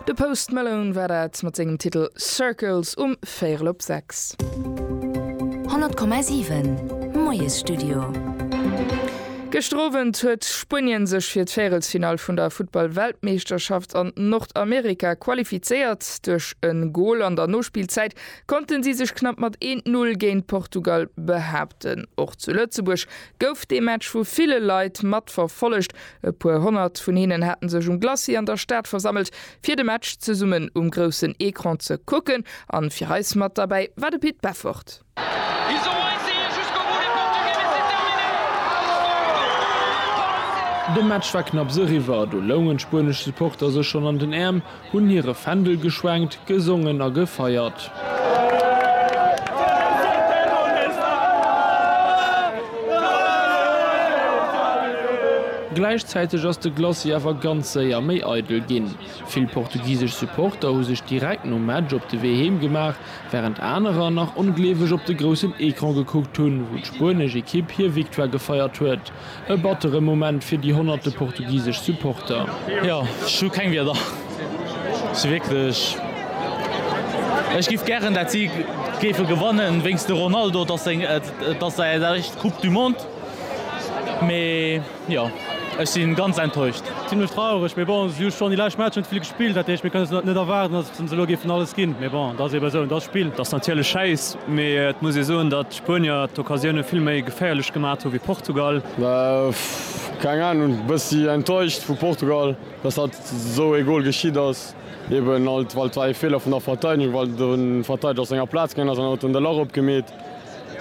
De Post Malone war dat mat sengem Titel Circles um véierel op sechs. 100,7 Moiesstudio. Gëschter Owend huet Spuenien sech fir d'Véierelsfinall vun der Futtball-Weltmeeschterschaft an Nordamerika qualifizéiert. Duerch e Gol an der Nospillzäit konnte si sech knapp mat 1-0 géint Portugal behaapten. Och zu Lëtzebuerg gouf dee Match vu ville Leit matverfollegt, E puer honnert vun hinnen haten sech um Glacis an der Stad versammelt fir de Match zesummen um groussen Ecran ze kucken an fir eis mat derbäi war de Pit Beffort. De Match war knapps eriwwer, do loungen d'spuenesch Supporter sech schonn an den Äerm. Hunn hire Fändel geschwenkt, gesongen a gefeiert. Gläichzäiteg ass de Glacis awer ganz séier méi eidel ginn. Vill portugisesch Supporter hu sech direkt nom Match op de Wee heem gemaach, wärend anerer nach ongleeweg op de groussen Ecran gekuckt hunn, wou d'spuenesch Ekipp hir Victoire gefeiert huet. E batteren Moment fir déi honnerte portugisesch Supporter. Jo, ech hu keng Wieder. Ech si wierklech, ech giff gären dat si géife gewannen wéinst de Ronaldo, et ass seng, et ass säi eischt Coupe du Monde, mee jo, ech si ganz enttäuscht. Zimlech traureg, mee bon, si hu schonn déi lescht Matcher net vill gespillt, dat heescht mir kënne se net erwaarden, datt se elo géifen alles ginn, mee bon, et ass ebe esou, et ass Spill. Et ass natierlech schäiss, mee et muss ee soen, datt. D'Spuenier d'Occasioune vill méi geféierlech gemat hu wéi Portugal. Keng Ahnung, bessi enttäuscht vu Portugal dass dat sou ee Goal geschitt ass, eben alt well et war ee Fehler vun der Verteidegung well den Verteideger aus senger Platz gaangen ass an en huet den Delort opgemeet,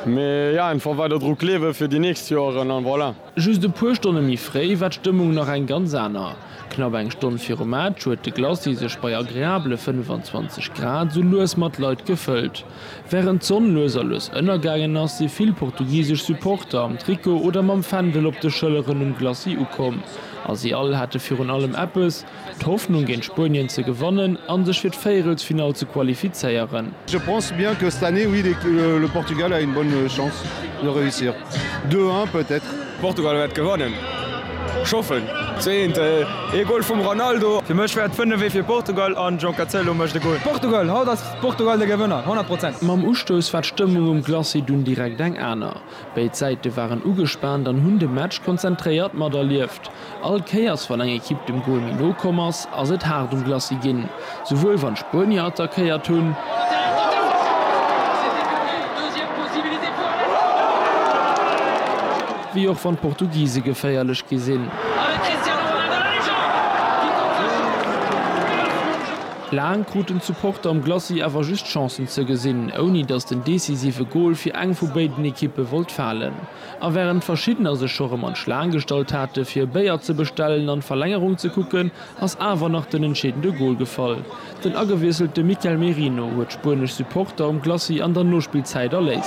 mee ja einfach weider dru gleewen fir déi nächst Joeren an voilà. Just e puer Stonne méi fréi war d'Stëmmung nach eng ganz aner. Knapp eng Stonn virum Match huet de Glacis sech bei agreabele 25 Grad sou lues mat Leit gefëllt. Wärend d'Sonn lues a lues ënnergaangen ass, si vill portugisesch Supporter am Trikot oder mam Fändel op de Schëlleren um Glacis ukomm. A si all hate virun allem eppes, d'Hoffnung géint Spuenien ze gewannen a sech fir d'Véierelsfinall ze qualifizéieren. Je pense bien que cette année oui le Portugal a une bonne chance de réussir deux un peut être. Portugal wäert gewannen, ech hoffen. Zwee eent, ee Gol vum Ronaldo. Fir mech wäert fënnef ee fir Portugal an João Cancelo mécht e Gol. Portugal, haut ass Portugal de Gewënner, 100 Prozent! Mam Ustouss war d'Stëmmung um Glacis dunn direkt eng aner. Béid Säite waren ugespaant an hunn de Match konzentréiert materlieft. All Kéiers wann eng Ekipp dem Gol méi no komm ass, ass et haart um Glacis ginn, souwuel wann d'Spuenier attackéiert hunn, wéi och wann d'Portugise geféierlech gi sinn. Laang kruten d'Supporter am Glacis awer just Chancen ze gesinn, ouni datt den decisive Gol fir eng vu béiden Ekippe wollt falen. A wärend verschiddener sech scho rëm an d'Schlaang gestallt hate fir e Béier ze bestellen an d'Verlängerung ze kucken, ass awer nach den entscheedende Gol gefall. Den agewiesselte Mikel Merino huet spuenesch Supporter um Glacis an der Nospillzäit erléist.